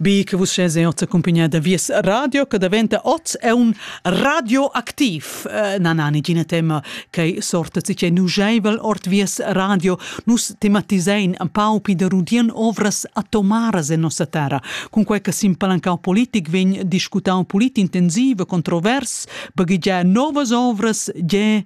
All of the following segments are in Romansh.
Bi che vus sches eau t'accumpigna da Vies radio che daventa oz è un radioaktiv. Äh, na, na, nigina tema che sorta si che nugeivel ord Vies radio. Nus tematisein un pau pi da rudien ovras atomaras en nossa terra. Con quei che simpalancau politic vegn discutau polit intensive, controvers, baghegiar novas ovras, ge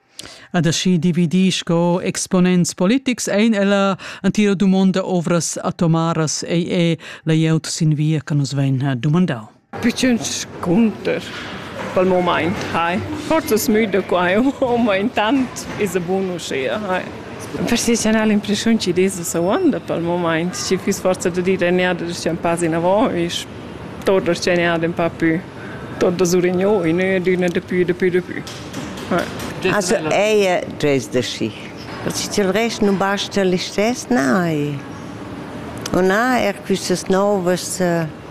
Ad aschi dividir sco exponents politics ein ella antira dumonda ovras atomaras ei e layout sin via che nus vein dumandau. Pitschen scunter pel moment, hai. Forzas müda quai, ma intant is a bun uschia, hai. Professional impressiun ci desa sa uanda pel moment, ci fiss forza da dire neada da scen pas in avant, is torda scen ad un pa più. Tonta Surignò in adüna dapü, dapü, dapü. Also ella dres da schi. Perché til rest non basta listess, nein. O na, er quistas novas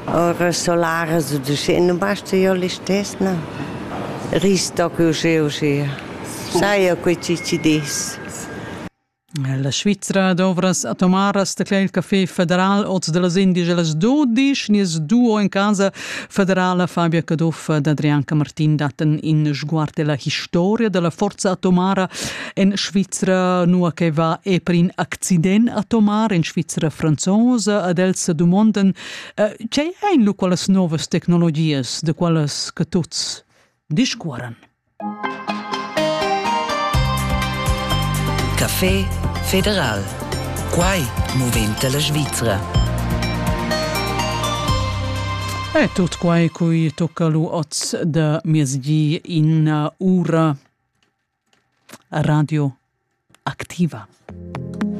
ora solaras o dusche, non basta io listess, no. Risto che usce usce. Sai io quei ci ci dis. La Svizra dovrass atomaras d'acla il café federal oz da las indias las dudisch. Nies duo en casa federala Fabia Caduff ed Adrianca Martin dattan in sguard della historia della forza atomara en Svizra, nua che va e per in accident atomar en Svizra franzosa ed els dumondan tgei ein lu quellas novas tecnologias de quelles che tuts discuoran. Café federal. Quai moventa la Svizra. E tut quai cui tocca lu oz da miezgi in ura radio activa.